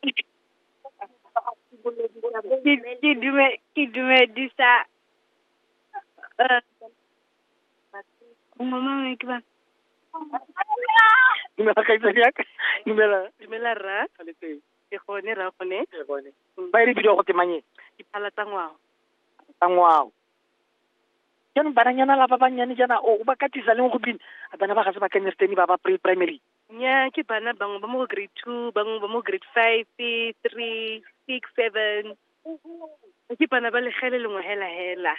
ke ke dume ke dumedisa mmangwe ke bana dumela kgaitsadi yaka dumela dumela rra ke gone rra gone ke gone ba e re bidiwa go temanyeng diphala tsa ngwao tsa ngwao jaanong bananyana la ba bannyane jaana o ba katisa leng go bina a bana ba ga se ba kenyerteni ba ba pre primary Nnyaa, ke bana bangwe ba mo go grade two, bangwe ba mo grade five, three, six, seven. Ke bana ba legele lengwe hela hela.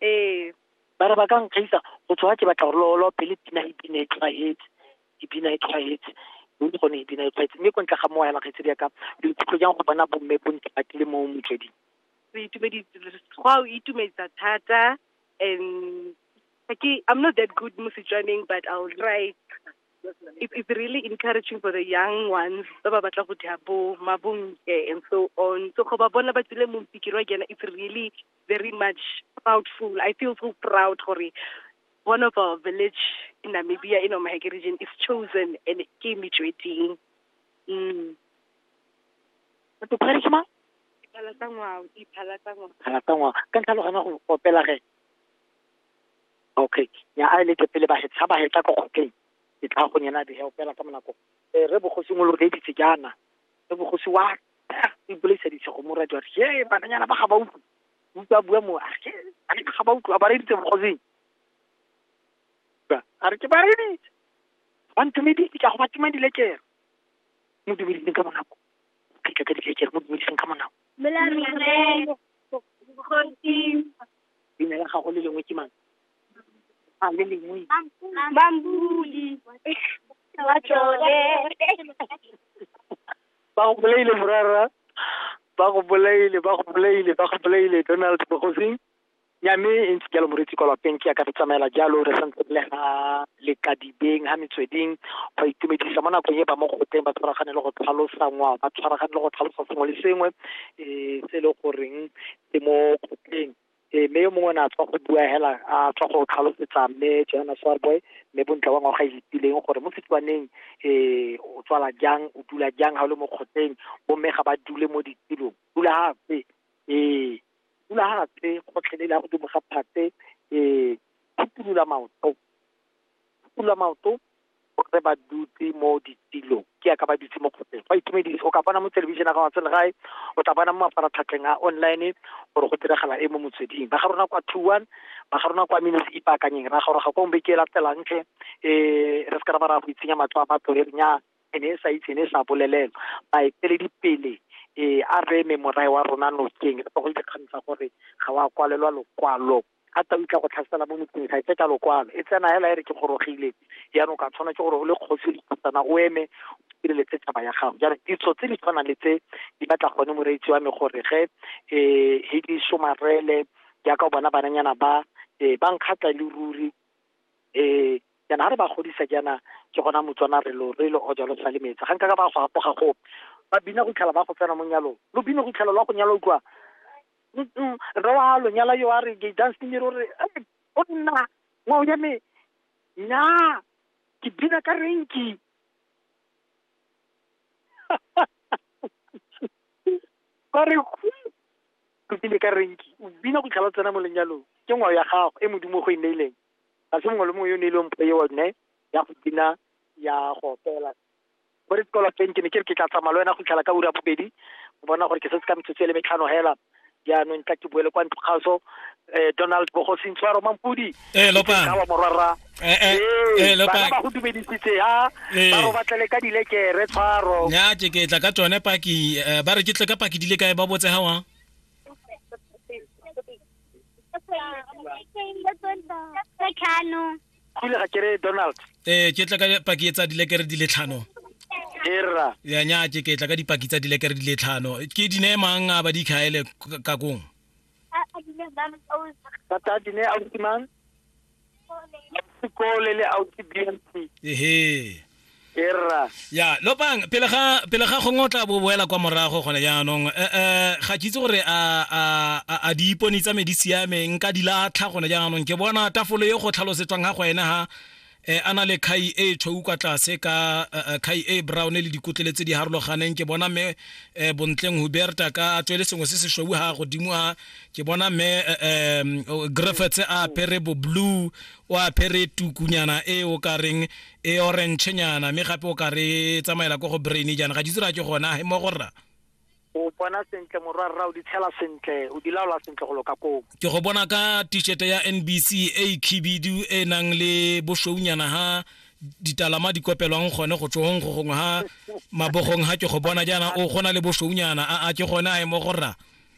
Ee. ba re ba ka nkgaisa go tshwa ke batla gore lolo pele pina e bina e tlhwaetse e bina e tlhwaetse mme ke gone e bina e tlhwaetse mme ko ntle ga moo yana kgaitsedi ya ka lo ikutlwa jang go bona bomme bo ntse ba tlile mo motsweding re itumeditse go a o itumedisa thata and Okay, I'm not that good mo Setswaneng, but I'll try. It, it's really encouraging for the young ones ba ba batla go dira bo mabonke and so on. So go ba bona ba tsile mo mpikiri wa kena, it's really very much proudful. I feel so proud gore one of our village in Namibia, in Omaheke region, is chosen and ke Metsweding. Mm. Batho ba re ke mang? Diphala tsa ngwao, diphala tsa ngwao. Kana tsa ngwao. Ka ntlha lo gana go opela ge. Okay. Nya a leke pele ba hetsa ba hetsa ko kgokeng. Ke tla go nyena di help ka monako. Eh re bogosi mo lo debitse jana. Re bogosi wa e bolisa di tsego mo radio. Ye bananyana ba ga ba utlwe. Utlwa bua mo. A ke a ke ga ba utlwa ba re ditse bogosing. A re ke ba re ditse. Ba ntumedi ke go ba tuma di lekere. Mo dumedise ka monako. Ke ka di lekere mo dumedise ka monako. Mela re re. Bogosi. Leina la gago le lengwe ke mang? A le lengwe. Mampodi. Matlole. Ba go bolaile morara. Ba go bolaile, ba go bolaile, ba go bolaile Donald Bogosing. Nyame e ntse jalo moretsi kwa lapeng ke ya ka re tsamaela jalo re santse re le ga lekadibeng ga metsweding go itumedisa mo nakong e ba mo goteng ba tshwaragane le go tlhalosanngwa ba tshwaragane le go tlhalosa sengwe le sengwe um se e le goreng e mo kgotleng e mme yo mongwe ne a tswa go bua hela a tswa go tlhalosetsa mme johannes warboy mme bontle wa ngwaga itileng gore mo setswaneng um o tswala jang o dula jang ga o le mo kgotleng bomme ga ba dule mo ditulong dula gape ee dula gape kgotlhele la godimo ga phate um phutulula maoto phutulula maoto gore ba dutse mo ditilong ke ya ka ba dutse mo kgotleng go itumedisa o ka bona mo television ga watsele gae o tla bona mo mafaratlhatlheng a online gore go diragala e mo motsweding ba ga rona kwa two one ba ga rona kwa mine se ipaakanyeng ra goroga kwa mbe ke e latelang tlhe um re se ka ra ba ra go itsenya matlo a batho re nya ene e sa itse ene e sa bolelelwa baeteledi pele um a re eme morae wa rona nokeng re tlogole dikgang tsa gore ga wa kwalelwa lokwalo a tau tla go tlhasela mo motseng ga e tse ka lokwalo e tsena hela e re ke gorogile jaanong ka tshwana ke gore o le kgosi dikhutsana o eme sireletse taba ya gago jaanong ditso tse di tshwanang le tse di batla gone moreetsi wa me gore ge um he di somarele jaaka o bona bananyana ba um ba nkgatla le ruri um jaana ga re ba godisa jaana ke gona motswana re lo re lo o jalo sa le metsi ga nka ka ba go apoga gope ba bina go itlhela ba go tsena mo nyalong lo bine go itlhela lwa go nyala utlwa rre wa lonyala yo a re ke dancing o re o nna ngwao ya me nya ke bina ka renki ba re o bine ka renki o bina go tlhalo tsena mo lenyalong ke ngwao ya gago e modimo go e neileng ga se mongwe le mongwe yo o neilweng mpho eo ne ya go bina ya go opela bo re tlola teng ke ne ke re ke tla tsamaya le wena go itlhela ka ura bobedi o bona gore ke setse ka metsotso e le metlhano hela jaanong tla ke boele kwa ntlo kgaso um eh, donald bogosi ntshwaro mampodi eh, kawa morwarra eh, bana ba go dumedisitse ya ba go batlele ka dilekere tshwaro ya ke ke tla ka tsone paki ba re ke tle ka paki di le kae ba botse ga wang kule ga kere donald ee ke tla ka paki e tsa dilekere di le tlhano era ya nya ke ke tla ka dipaki tsa dilekere di le tlhano ke di ne mang a ba di khaele ka kong tata di ne ausi mang sekole le ausi bnc ehe erra ya lopang pele ga pele ga gongwe o tla bo boela kwa morago gone jaanong eh, eh, ga ke itse gore a a a- a di ipone tsa me di siame nka di latlha gone jaanong ke bona tafolo e go tlhalosetswang ga go ene ha eh, a na le khai e tshweu kwa tlase ka eh, eh, khai e brown le dikotlele tse di harologaneng ke bona me eh, bontleng huberta ka a tswele sengwe se se shweu ha godimo a ke bona me eh, eh, griffiths a apere bo blue o apere tukunyana e o ka reng e orangenyana mme gape o ka re e tsamaela ko go brain jaana ga ditse ra ke gona he mo go rra o bona sentle morwa rra o di tshela sentle o di laola sentle go loka koo ke go bona ka t-shirt ya nbc e e khibidu e nang le boshweunyana ha ditalama di kopelwang gone go tsogong go gongwe ha mabogong ha ke go bona jaana o gona le boshweunyana a a ke gone a e mo go rra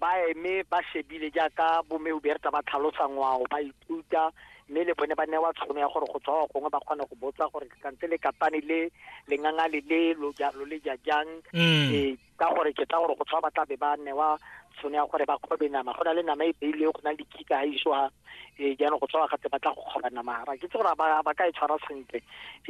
ba eme ba shebile jaaka bomme huberta ba tlhalosa ngwao ba ithuta mme le bone ba newa tshono ya gore go tswa gongwe ba kgone go botsa gore kantse le katane le lenganga le le lo ja lo le ja jang Mm. eh, ka gore ke tsa gore go tshwa ba tla be ba newa tshono ya gore ba kgobe nama go na le nama e beilwe go na le dikika ga isoa eh jaanong go tshwa gatse ba tla go kgoba nama ga ke tse gore ba ba ka e tshwara sentle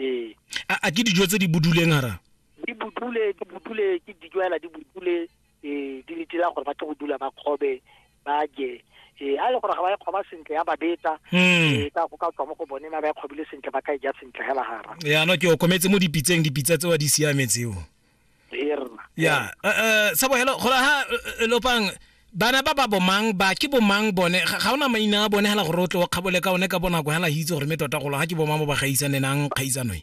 eh a a ke dijo tse di buduleng ara di budule di budule ke dijo hela di budule ee di le dira gore ba tle go dula ba kgobe ba je ee a le gore ga ba e kgoba sentle ya ba beta hmm. ee ka go ka tswa mo go bone ma ba e kgobile sentle ba ka e ja sentle hela gara ya no ke o kometse mo dipitseng dipitsa tseo di siametseo ya eh, eh, sa bohelo gola ha eh, lopang bana ba ba bomang ba ke bomang bone ga ona maina a bone hela gore o tle o kgabole ka one ka bonako hela hitse gore me tota golo ga ke bomang mo ba gaisanenang kgaisano e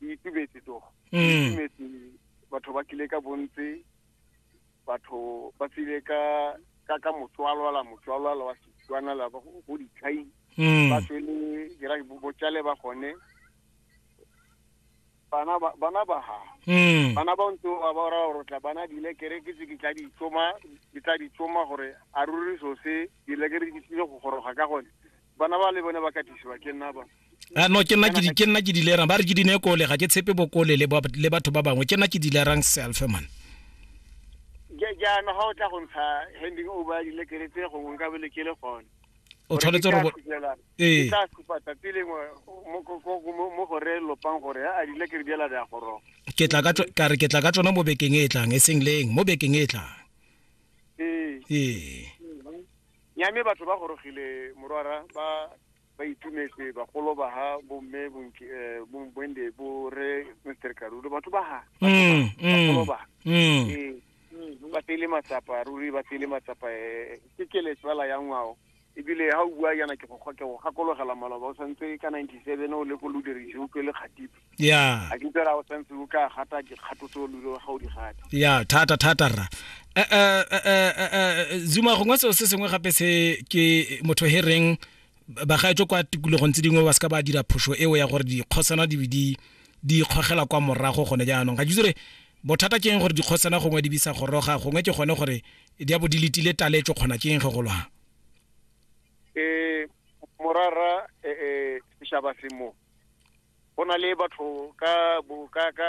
di itumetse to mm. itumetse batho ba tlile ka bontsi batho ba tsile ka ka ka motswalwala motswalwala wa setswana la go ditlhai mm. ba tswele dira botšale ba gone bana ba bana ba ha mm. bana ba ntse ba ba ra rotla bana di lekere ke tse ke tla di tsoma ke tla di tsoma gore a ruri so se di lekere di tsile go goroga ka gone bana ba le bone ba katisiwa ke nna ba a ah, no ke nna ke nna ke dilerang ba re ke dine kole ga ke tshepe bokole le le batho ba bangwe ke nna ke dilerang self man jaana ga o tla go ntsha handing o ba dile keretse gongwe nka bele ke le gone o tshwanetse go ee tla supa tsatsi lengwe mo gore lopang gore a dile kere diela di a goroga ke tla ka ka re ke tla ka tsona mo bekeng e e tlang e seng leng mo bekeng e e tlang ee ee Nyame batho ba gorogile morwara ba ba itumetse bagolo ba ha bomme bonki eh, bo- bwende bo re Mr Karulo batho ba ha Mm, mm, bagolo ba mm. Eh, mm, ba tsele matsapa ruri ba tsele matsapa eh, ke kele tsala ya ngwao ebile ga o bua yana ke go kgo- ke go gakologela maloba o santse ka 97 o le ko lodirisiutlwe le kgatipe ya a ke tsela o sentse o ka gata ke kgato tse o lule ga o di gata ya thata thata rra eh, eh, eh, zuma gongwe seo se sengwe gape se ke motho he reng bagaetso kwa tikologong tse dingwe ba se ka ba dira phoso eo ya gore dikgosana di di di kgogela kwa morago gone jaanong ga jitsore bothata ke eng gore dikgosana gongwe di bisa goroga gongwe ke gone gore di a bo di letile taletso kgona ke eng ge go lwang eh morara eh eh seshaba se mo go na le batho ka bo ka ka